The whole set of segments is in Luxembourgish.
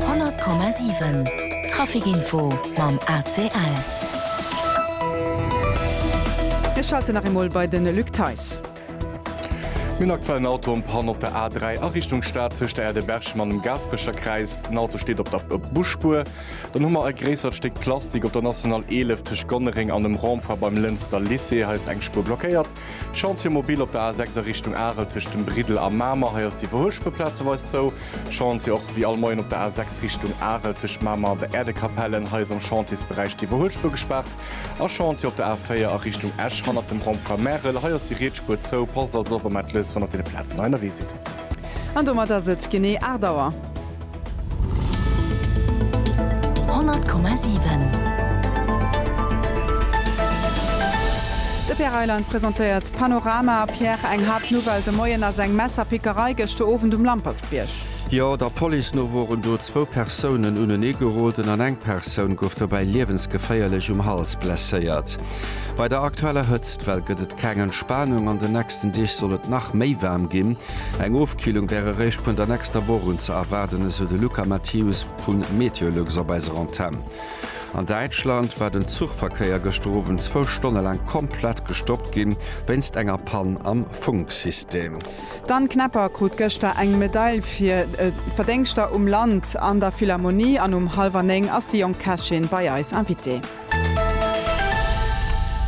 100,7 Traficinfo mam ACL. Mir schalten nach eemol bei de Luc Theis. Mir hunn aktuell en Auto en Panne op der A3 a Richtung Stad tëscht der Aire de Berchem an dem Gaasperecher Kräis. Den Auto steet op der Busspuer. Dann hu mer e gréissert Stéck Plastik op der National 11 tëscht Gonnereng an dem Rond-point beim Lënster Lycée. Hei ass eng Spuer blockéiert. Chantier mobil op der A 6 a Richtung Arel tëscht dem Briddel a Mamer. Hei ass déi Verhullspuer plazeweis zou. Chantier och wéi all Moien op der A 6 Richtung Arel tëscht Mamer an der Äerdekapellen. Hei ass am Chantiersberäich déi Verhullspuer gespaart. A Chantier op der A 4 a Richtung Esch hannert dem Rond-point Märel. Hei ass déi Rietsspuer zou. Passt also op a mellt lous, wann der op deene Plazen hei ënnerwee sidd. An domat ass et genee 8 Auer. 100,7. De Pierre Reyland presentéiert d'Panorama. Pierre, eng haart Nouvelle de Moien ass eng Messerpickerei gëschter Owend um Lampertsbierg. Jo, der Police no woren do zwou Persounen uneneegeroden an eng Persoun gouf dobäi liewensgeféierlech um Hals blesséiert. Bei der aktueller Hëtztwell gëtt et keng Entspanung. An den nächsten Deeg soll et nach méi waarm ginn. Eng Ofkillung wär eréischt vun der nächster Woch un ze erwaarden, esou de Luca Mathius vu Meteolux op eiser Antenn. An Däitschland war den Zuchverkéier gëschter Owend zwou Stonne laang komplett gestoppt ginn, wéinst enger Pann am Funksystem. D'Anne Knepper krut gëschter eng Medail fir Verdéngschter um Land an der Philharmonie an um hallwer néng ass déi jonk Kächin bei eis Invitée.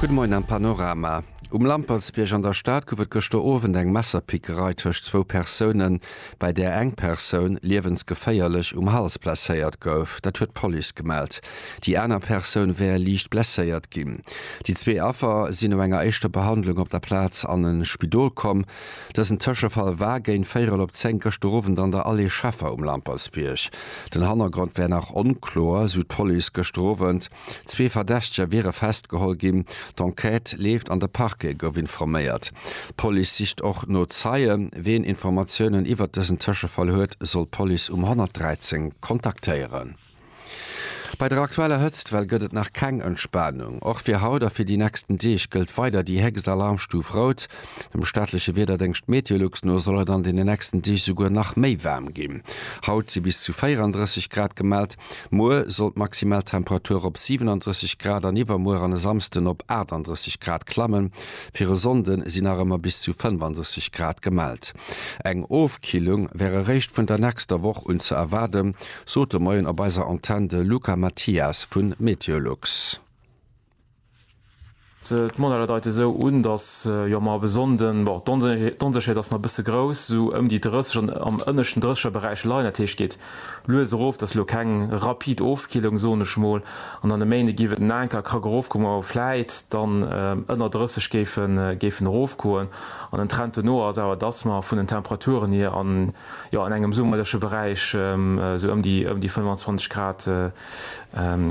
Gudde Moien am Panorama. Um Lampertsbierg an der Stad gouf et gëschter Owend eng Messerpickerei tëscht zwou Persounen, bei där eng Persoun liewensgeféierlech um Hals blesséiert gouf. Dat huet d'Police gemellt. Déi aner Persoun wär liicht blesséiert ginn. Déi zwee Affer sinn no enger éischter Behandlung op der Plaz an e Spidol komm. Dësen Tëschefall war géint véierel op zéng gëschter Owend an der Allée Schaeffer um Lampertsbierg. Den Hannergrond wär nach onkloer, esou d'Police gëschter Owend. Zwee Verdächteger wiere festgeholl ginn. D'Enquête leeft an de Parquet gouf informéiert. D'Police sicht och no Zeien. Wien Informatiounen iwwert dësen Tëschefall huet, soll d'Police um 113 kontaktéieren. Bei der aktueller Hëtztwell gëtt et nach keng Entspanung. Och fir haut a fir déi nächsten Deeg gëllt weider déi héchst Alarmstuf Rout. Dem staatleche Wiederdéngscht Meteolux no soll et an den nächsten Deeg souguer nach méi waarm ginn. Haut si bis zu 34 Grad gemellt. Muer soll d'Maximaltemperatur op 37 Grad an iwwermuer an e Samsden op 38 Grad klammen. Fir e Sonnde si nach ëmmer bis zu 35 Grad gemellt. Eng Ofkillung wär eréischt vun der nächster Woch un ze erwaarden. Sot de Moien op eiser Antenn de Luca Mathias vu Meteolux. D'Modeller deite sou un, datt jo mar op e Sonnden, bon d'Onsécherheet ass nach e bësse grouss, sou ëm déi 30 an am ënneschten drécheger Beräich leien. Dat heescht geet lues erof, et ass elo keng rapid Ofkillung, soen ech mol, an dann e Méinde giff et en Anker e Krack erofgoen, ma wou vläit dann ënner 30 géifen erofgoen. An den Trend dono ass awer, datt mer vun den Temperaturen hier an. Jo, an engem summerleche Beräich, esou ëm déi 25 Grad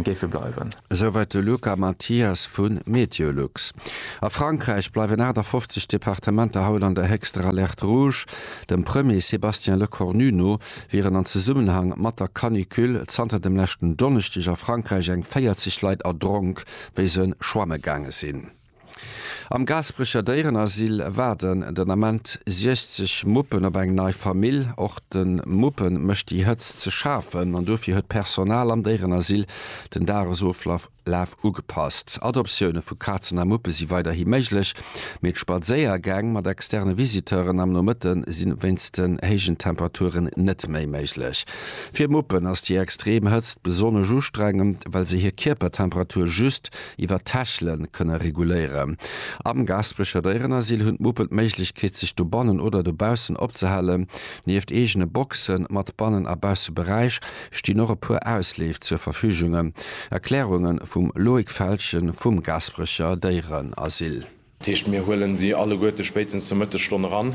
géife bleiwen. Esouwäit de Luca Mathias vu Meteolux. A Frankräich bleiwen 58 Departementer haut an der héchster Alerte rouge. Dem Premier Sébastien Lecornu no wieren an Zesummenhang mat der Canicule zanter dem leschten Donneschdeg a Frankräich eng 40 Leit erdronk, wéi se schwamme gaange sinn. Am Gaasperecher Déierenasyl waarden den Ament 60 Muppen op eng nei Famill. Och de Muppe mécht déi Hëtzt ze schafen an dofir huet d'Personal am Déierenasyl den Dagesoflaf ugepasst. Adoptioune vu Kazen a Muppe si weiderhi méiglech, mee d'Spadséiergäng mat externe Visiteuren am Nomëtte si wéinst den héijen Temperaturen net méi méiglech. Fir Muppen ass déi extrem Hëtzt besonnesch ustrengend, well se hir Kierpertemperatur just iwwer d'Täschelen kënne reguléieren. Am Gaspecher Déierenasyl hunn d'Muppen d'Méiglechkeet sech dobannen oder dobaussen opzehalen. Nieft eegene Boxe mat Bannen a Bausseberäich stinn och e puer Ausleef zur Verfügunge. Erklärunge vum Loïc Feltgen vum Gasperecher Déierenasyl. Dat heescht, mir huelen si alleguerte spéitstens zur Mëttesstonn eran.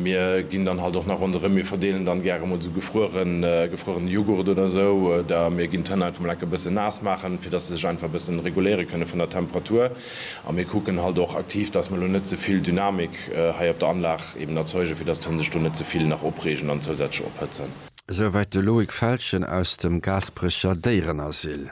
Mir ginn dann halt och nach ronderëm. Mir verdeelen dann gäre emol esou gefrueren, gefruerene Jughurt oder esou. Oder mir ginn d'Hënn einfach emol enke bëssen naass maachen, fir dass se sech einfach e bëssen reguléiere kënne vun der Temperatur. A mir kucken halt och aktiv, dass mer elo net ze vill Dynamik hei op der Anlag eben erzeugen, fir dass d'Hënn sech do net ze vill nach opreegen an zousätzlech ophëtzen. Esouwäit de Loïc Feltgen aus dem Gaasperecher Déierenasyl.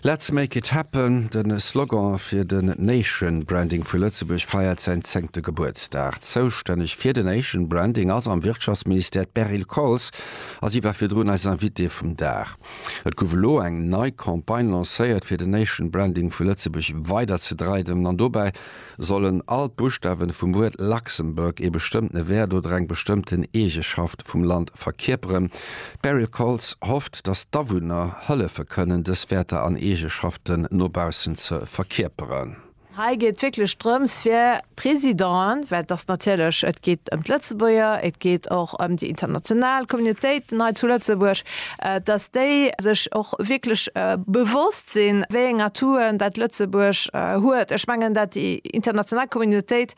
Let's make it happen, de Slogan fir den Nation Branding vu Lëtzebuerg feiert säin zéngte Gebuertsdag. Zoustänneg fir den Nation Branding ass am Wirtschaftsministère d'Beryl Coles a si war virdrun eis Invitée vum Dag. Et gouf elo eng nei Campagne lancéiert fir den Nation Branding vu Lëtzebuerg weider ze dreidemen an dobäi Sollen all d'Buschtawen vum Wuert Luxembourg ee bestëmmtene Wäert oder eng bestëmmten Eegeschaft vum Land verkierperen? D'Beryl Koltz hofft, datt d'Awunner hëllefe kënnen, dës Wäerter an Eegeschaften no baussen ze verkierperen. Hei geet et wierklech drëms, fir d'Residenten, well et ass natierlech, et geet ëm d'Lëtzebuerger, et geet och ëm déi international Communautéiten hei zu Lëtzebuerg, dass déi sech och wierklech bewosst sinn, wéi eng Atouen dat Lëtzebuerg huet. Ech mengen, dat déi international Communautéit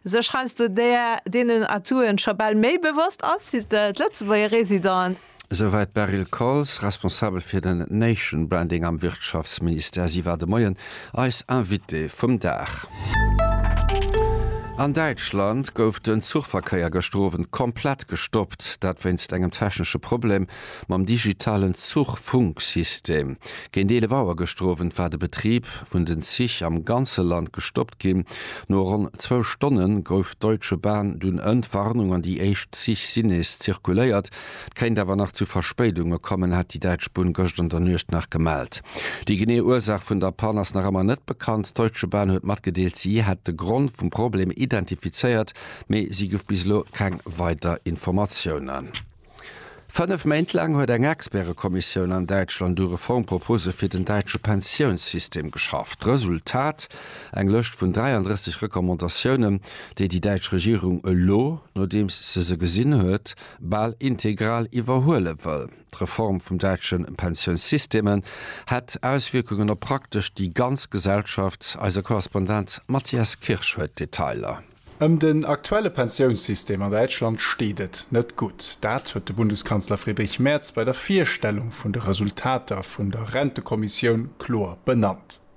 sech heiansdo deenen Atouen scho bal méi bewosst ass wéi d'Lëtzebuerger Residenten. Esouwäit d'Beryl Coles, Responsabel fir den Nation Branding am Wirtschaftsministère. Si war de Moien Eis Invité vum Dag. An Däitschland gouf den Zuchverkéier gëschter Owend komplett gestoppt, dat wéinst engem technesche Problem mam digitalen Zuchfunksystem. Géint 11 Auer gëschter Owend war de Betrib vun den Zich am ganze Land gestoppt ginn. No ronn zwou Stonne gouf d'Deutsche Bahn dunn Entwarnung an déi éischt Zich sinn nees zirkuléiert. Et kéint awer nach zu Verspéidunge kommen, hat déi däitsch Bunn gëscht an der Nuecht nach gemellt. Déi genee Ursaach vun der Pann ass nach ëmmer net bekannt. D'Deutsche Bahn huet matgedeelt, si hätt de Grond vum Problem identifizéiert, mee si gouf bis elo keng weider Informatiounen. Fënnef Méint laang huet eng Expertekommissioun an Däitschland u Reformpropose fir den däitsche Pensiounssystem geschafft. Resultat, eng Lëscht vun 33 Recommandatiounen, déi déi däitsch Regierung elo, nodeems se se gesinn huet, bal integral iwwerhuele wëll. D'Reform vum däitsche Pensiounsysteme hätt Auswierkungen op praktesch déi ganz Gesellschaft. Eise Korrespondent Matthias Kirsch huet d'Detailer. Ëm den aktuelle Pensiounssystem an Däitschland steet et net gutt. Dat huet de Bundeskanzler Friedrich Merz bei der Virstellung vun de Resultater vun der Rentekommissioun kloer benannt.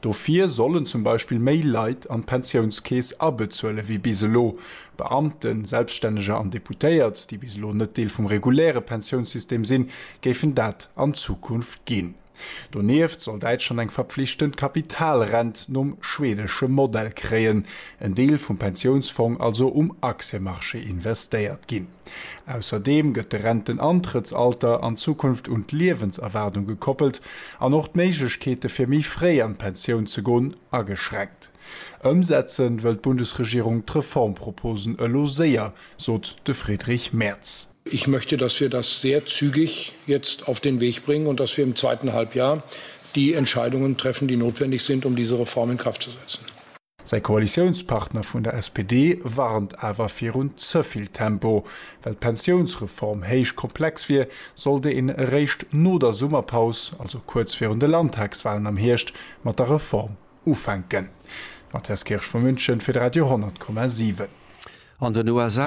Dofir sollen zum Beispill méi Leit an d'Pensiounskeess abezuele wéi bis elo, Beamten, Selbststänneger an Deputéiert, déi bis elo net Deel vum reguläre Pensiounssystem sinn, géifen dat an Zukunft ginn. Donieft soll Däitschland eng verpflichtend Kapitalrent nom schwedesche Modell kréien, en Deel vum Pensiounsfong also um Aktienmarché investéiert ginn. Ausserdeem gëtt de Rentenantrëttsalter an Zukunft un d'Liewenserwaardung gekoppelt an och d'Méiglechkeete fir méi fréi an d'Pensioun ze gon ageschränkt. Ëmsetze wëll d'Bundesregierung d'Reformproposen elo séier, sot de Friedrich Merz. Ich möchte, dass wir das sehr zügig jetzt auf den Weg bringen und dass wir im zweiten Halbjahr die Entscheidungen treffen, die notwendig sind, um diese Reform in Kraft zu setzen. Säi Koalitiounspartner vun der SPD warnt awer virun ze vill Tempo. Well d'Pensiounsreform héich komplex wier, sollt een eréischt no der Summerpaus, also kuerz virun de Landtagswalen am Hierscht, mat der Reform ufänken. Mathias Kirsch vu München fir de Radio 100 Komma 7. An den USA.